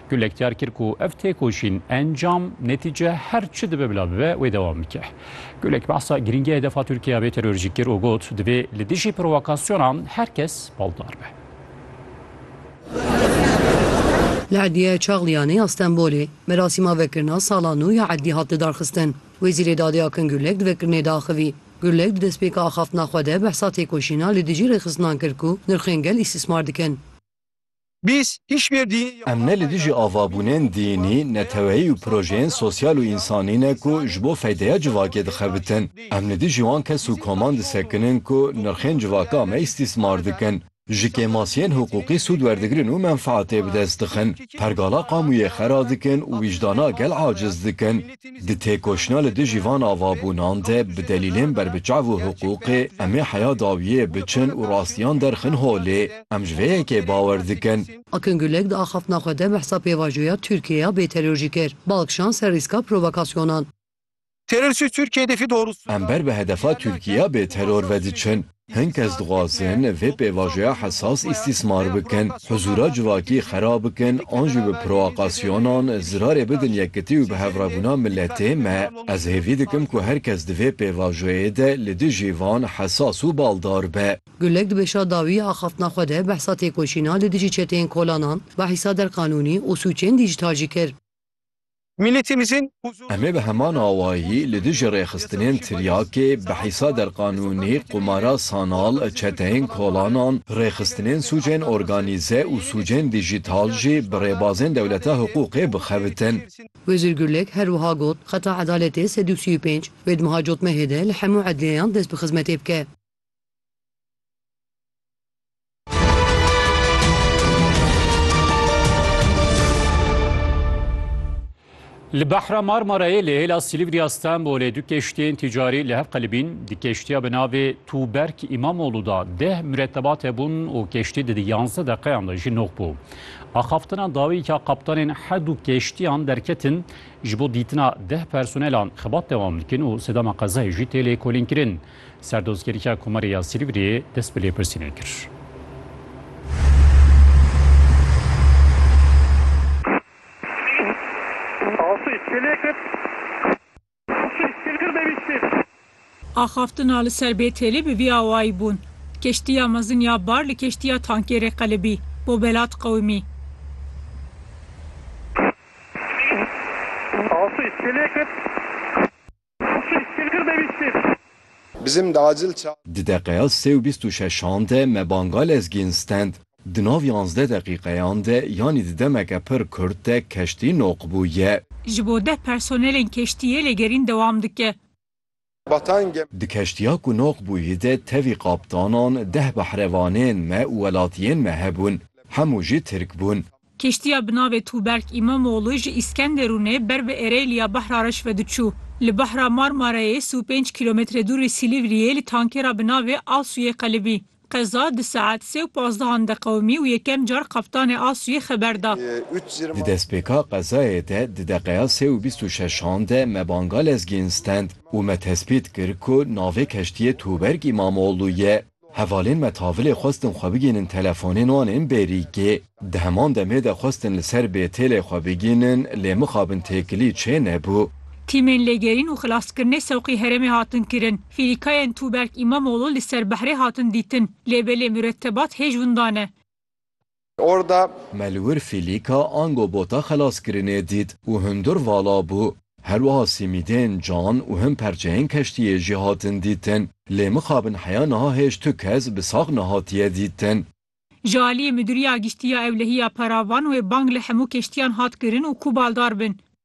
Gulek diyar kir ku ev têkoşîn encam, netîce her çi dibe bila bibe wê dewam bike. Gulek behsa girîngiya hedefa Tirkiye ya vê terorjî kir û got, divê li dijî provokasyonan her kes baldar be. Li Edlîyaya Çaxliyanê ya Stenbolê merasîma vekirina sala nû ya Edlî hat lidarxistin. Wezîrê Dadê Akin Gulek di vekirinê de axivî. Gulek di destpêka axaftina xwe de behsa têkoşîna li dijî rêxistinan kir ku nirxên gel îstîsmar dikin. Biz hiçbir dini ya Em ne li dijî avabûnên dînî, neteweyî û projeyên sosyal û însanî ne ku ji bo feydeya civakê dixebitin. Em li dijî wan kes û koman disekinin ku nirxên civaka me îstîsmar dikin, ji kêmasiyên hiqûqî sûd werdigirin û menfeatê bi dest dixin, pergala qamûyê xera dikin û wîcdana gel aciz dikin. Di têkoşîna li dijî van avabûnan de bi delîlên berbiçav û hiqûqê em ê heya dawiyê biçin û rastiyan derxin holê. Em ji vê yekê bawer dikin. Akin Gulek di axaftina xwe de behsa pêvajoya Tirkiyeya bêteror jî kir. Bal kişand ser rîska provokasyonan. Terorçî Tirkiyeyê difî dorûs. Em ber bi hedefa Tirkiyeya bêteror ve diçin. Hin kes dixwazin vê pêvajoya hesas îstîsmar bikin, huzûra civakî xerab bikin an jî bi proakasyonan zirarê bidin yekitî û bihevrebûna miletê me. Ez hêvî dikim ku her kes di vê pêvajoyê de li dijî van hesas û baldar be. Gulek di bêşa dawî axaftina xwe de behsa têkoşîna li dijî çeteyên kolanan, behîsa der qanûnî û sûcên dîjîtal jî kir. Em ê bi heman awayî li dijî rêxistinên tiryakê, behîsa derqanûnî, qumara sanal, çeteyên kolanan, rêxistinên sûcên organîze û sûcên dîjîtal jî bi rêbazên dewleta hiqûqê bixebitin. Wezîr Gurlek her wiha got, Xeta edaletê sed û sî û pênc, wê di miha cotmehê de li hemû edliyeyan dest bi xizmetê bike. Li Behra Marmarayê li hêla Silivriya Stenbolê du keştiyên ticarî li hev qelibîn. Di keştiya bi navê Tûberk Îmamoğlu da deh miretebat hebûn û keştî di yanze deqeyan de jî nok bû. Axaftina dawî ka kaptanên her du keştiyan derketin ji bo dîtina deh personelan xebat dewam dikin û sedema qezayê jî tê lêkolînkirin. Serdozgeriya Komarê ya Silîvriyê dest bi lêpirsînê kir. Axaftina li ser Bêtêlê bi vî awayî bûn, Keştiya mezin ya bar li keştiya tankêrê qelibî, bo Belat qewimî. Hişî, kîrkir devîstîn. Bizim de acil ça. Di deqeya sê û bîst û şeşan de me banga lezgîn stend. Di nav yanzdeh deqîqeyan de yanî di demeke pir kurt de keştî noq bûye. Ji bo deh personelên keştiyê lêgerîn dewam dike. Batan gem. Di keştiya ku noq bûye de tevî kaptanan, deh behrevanên me û welatiyên me hebûn. Hemû jî tirk bûn. Kîştiya bi navê Tûberk Îmamoglû ji Îskenderûnê ber bi Ereyliya Bahra Reş ve diçû. Li Bahra Marmareyê sî û pênc kîlometre dûr li Sîlîvriyê li tankêra bi navê Asûyê qelibî. Qeza di saet sê û pazdeh-an de qewimî û yekem car kaptanê Asûyê xeber da. Di destpêka qezayê de di deqeya sê û bîst û şeş-an de me banga lezgîn stend û me tespît kir ku navê keştiyê Tûberk Îmamoglû ye. Hevalên me tavilê xwestin xwe bigihînin telefonên wan ên bêrîkê. Di heman demê de xwestin li ser bêtêlê xwe bigihînin lê mixabin têkilî çê nebû. Tîmên lêgerîn û xilaskirinê sewqî herêmê hatin kirin. Fîrîkayên Tûberk Îmamoglû li ser behrê hatin dîtin. Lêbelê muretebat hêj winda ne. Orda. Me li wir fîlîka ango bota xelaskirinê dît û hundir vala bû. Her wiha sîmîdên can û hin perçeyên keştiyê jî hatin dîtin. Lê mixabin heya niha hêj tu kes bi sax nehatiye dîtin. Ji aliyê Midûriya Giştî ya Ewlehiya Paravan wê bang li hemû keştiyan hat kirin û ku baldar bin.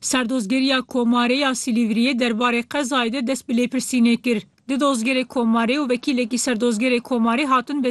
Serdozgeriya Komarê ya Silîvriyê derbarê qezayê de dest bi lêpirsînê kir. Du dozgerê Komarê û wekîlekî Serdozgerê Komarê hatin beziyandin.